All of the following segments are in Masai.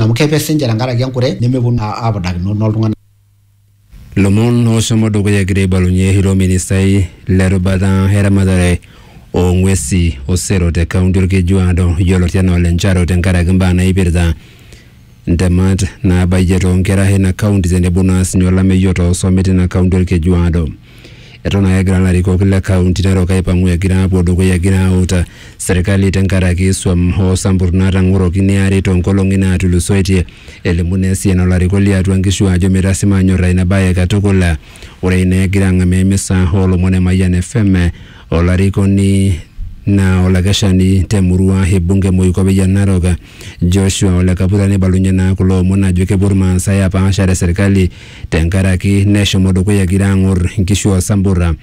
amu kepe sinche tenkaraki enkure nemeponu apudakino noltung'anak. Lomon oshomo dukuya egira aibalunye ilo ministai le rubata eramatare oo ng'wesi o sero te kaunti Olkejuado yioloti anaa Ole Njaro tenkaraki mbaa naipirta ntemat naabayie too nkera eina kaunti tenebo naa sinye olameyu otoosome teina kaunti Olkejuado. Eton ake egira larikok le kaunti narok aipang'u egira apuo dukuya egira auta serkali tenkaraki swam hoo sampur natang'oroki neari tonkolong'i natulusoitie. Elimu naa esiana olarikok liatua nkishu ajo mitasima anyorra ina bae katukul. Ore ina egira ang'amaa emisa olomon e Mayian FM olarikoni naa olakeshani te murua e bunge Moikope Narok Joshua ole Kabuta neibalunye naa kulo omon ajo kepuo Irmaasai apaashare serkali tenkaraki neshomo dukuya egira aang'or nkishu o samburra.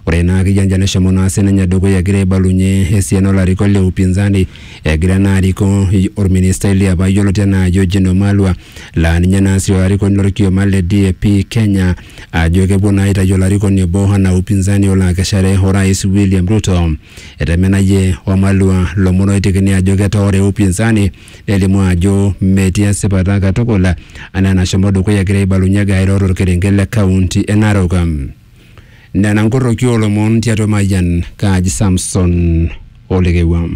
Ore naa akeyie anja neshomo naa sininye dukuya egira aibalunye esiana olarikok le upinzani egira naa arikoo orministai liapa yioloti enaa Eugene Wamalwa laa ninye naa sii olarikoni lorkioma le DAP Kenya ajo kepuo naa aitayu olarikoni obo enaa upinzani olo akeshare orais William Ruto. Etemenayie Wamalwa lomon oitekini ajo ketoore upinzani nelimu ajo metii esipata katukul anaa enashomo dukuya egira aibalunye egira airo torkerenket le kaunti e Narok. Nena nkorroki oolomon tiatua Mayian Kaji Samson Olekewua.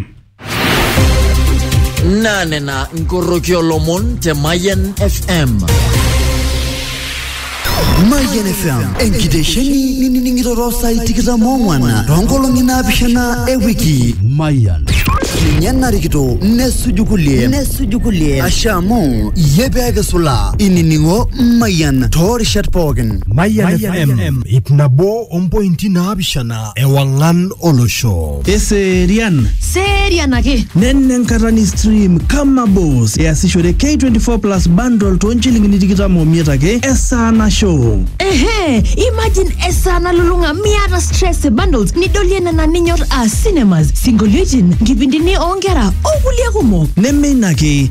Naa nena nkorroki olomon te Mayian FM. Mayian FM enkitesheni nining'iroro saai tikitam oong'wan toonkolong'i naapishana e wiki. Mayian. Ninye narikito nesuju kulie nesuju kulie ashe amu iyie pee kisula inining'o Mayian toorishat pookin. Mayian FM ip nabo ompointi naapishana. ewang'an olosho. Eserian. Serian ake. Nena enkata ni stream kama boss easishore K24 plus bundle too nchilingini tikitam omiet ake esaa nasho. Ehe, imagine esaa nalulung'a miata stress e bundles nidolie nena ninyor aa cinemas, sinkolioitin, nkipindini oonkera o kulie kumok. Neme ina ake,